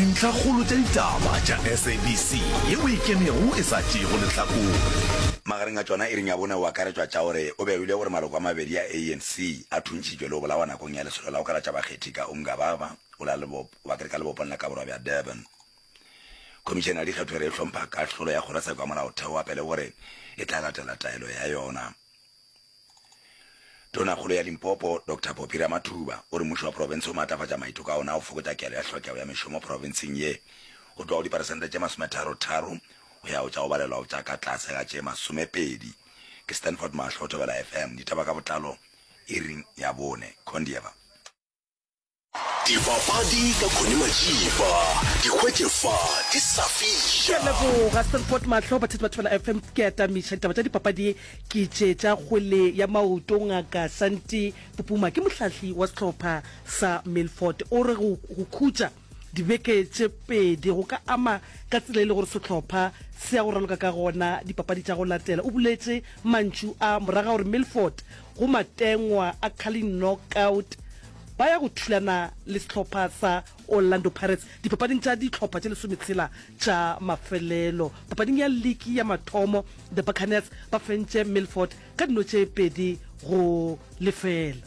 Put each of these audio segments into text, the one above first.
Dintlhakgolo tša ditaba tša SABC ye o e kenego e sa tšeego lehlakore. Magareng a tšona iring ya bone o akaretšwa tša gore o be a hwile gore maloko a mabedi a ANC a thuntšitšwe le go bolawa nakong ya lesolo la go kalatša bakgethi ka Umgababa o la Lebopo wa Krika lebopong la Kaborwa bja Durban. Khomišene ya dikgetho e re e hlompha kahlolo ya kgorotsheko ya molaotheo wa pele gore e tla latela taelo ya yona. Tonakgolo ya Limpopo, Doctor Poppy Ramathuba, o re mmušo wa profense o maatlafatša maiteko a ona a go fokotša kelo ya tlhokego ya mešomo profenseng ye go tloga go diperesente tše masometharo-tharo go ya go tša go balelwa go tša ka tlase ga tše masomepedi. Ke Stanford Mahlo, Thobela FM, ditaba ka botlalo iring ya bone. Condieva. dipapadi ka khone majiba di hwetše fa di sa fiša leboga serport mahlo bathati ba thobela fm ke atamiša ditaba tša dipapadi ke tše tša kgwele ya maoto ngaka santi popuma ke mohlahli wa sehlopha sa milford o re go go khutša dibeke tše pedi go ka ama ka tsela e le gore sehlopha se ya go raloka ka gona dipapadi tša go latela o buletše mantšu a moraga gore milford go matengwa a carling knockout ba ya go thulana le sehlopha sa orlando pirates dipapading tša dihlopha tše lesometshela tša mafelelo papading ya liki ya mathomo the buccaneers ba fentše milford ka dino tše pedi go lefela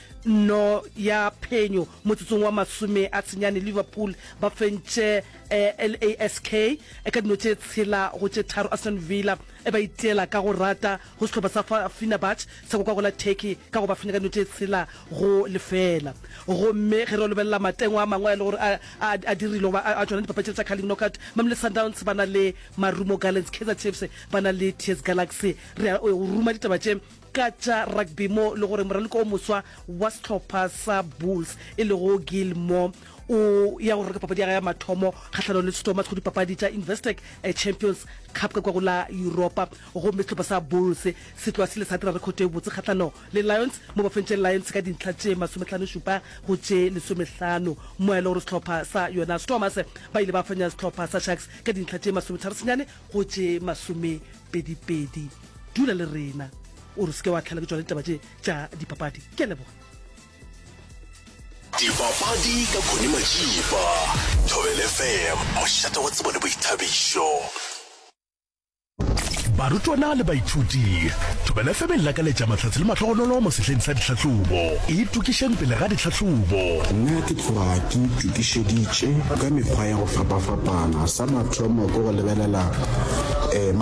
Nno ya phenyo motsotsong wa masome a senyane Liverpool ba fentše LASK ka dino tše tshela go tše tharo Aston Villa e ba itiela ka go rata go sehlopha sa Fenerbahce sa go kwago la Turkey ka go ba fenya ka dino tše tshela go lefela Gomme ge re yo lebelela matengwa a mangwe a e le gore a a a dirilwe goba a a tšona dipapatšing tša Carling Knockout Mamelodi Sundowns ba na le Marumo Gallants Kaizer Chiefs ba na le TS Galaxy Re ya go ruma ditaba tše ka tša rugby mo le gore moraloki o moswa wa sehlopha sa bulls e lego gil moore o ya go reka papadi ya ga ya mathomo kgahlano le sethoma sego dipapadi tša investec eh, champions cup ka kwa go la europa gomme sehlopha sa bulls se tloa se le sa dira rekhoto e botse kgahlano le lions mo ba fentše lions ka dintlha tše masometlhanošupa go tše lesomehlano mo e le gore sehlopha sa yona stormers ba ile ba fanya sehlopha sa sharks ka dintlha tše masometharo senyane go tše masomepedipedi Dula le rena, o re se ke wa tlhela ke tšwa le ditaba tše tša dipapadi. Ke a leboga. Dipapadi ka Connie Matšipa, Thobela FM, mošate wa tsebo le boithabišo. Barutwana le baithuti, Thobela FM e lakaletša mahlatse le mahlogonolo mo sehleng sa dihlahlobo. Itokišeng pele ga dihlahlobo. Nna ke tloga ke itokišeditše ka mekgwa ya go fapafapana. Sa mathomo ke go lebelela um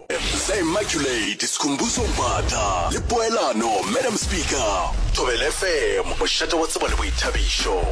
Sa Immaculate, Sikhumbuzo Mbatha le Poelano, Madam Speaker, Thobela FM, mošate wa tsebo le boithabišo.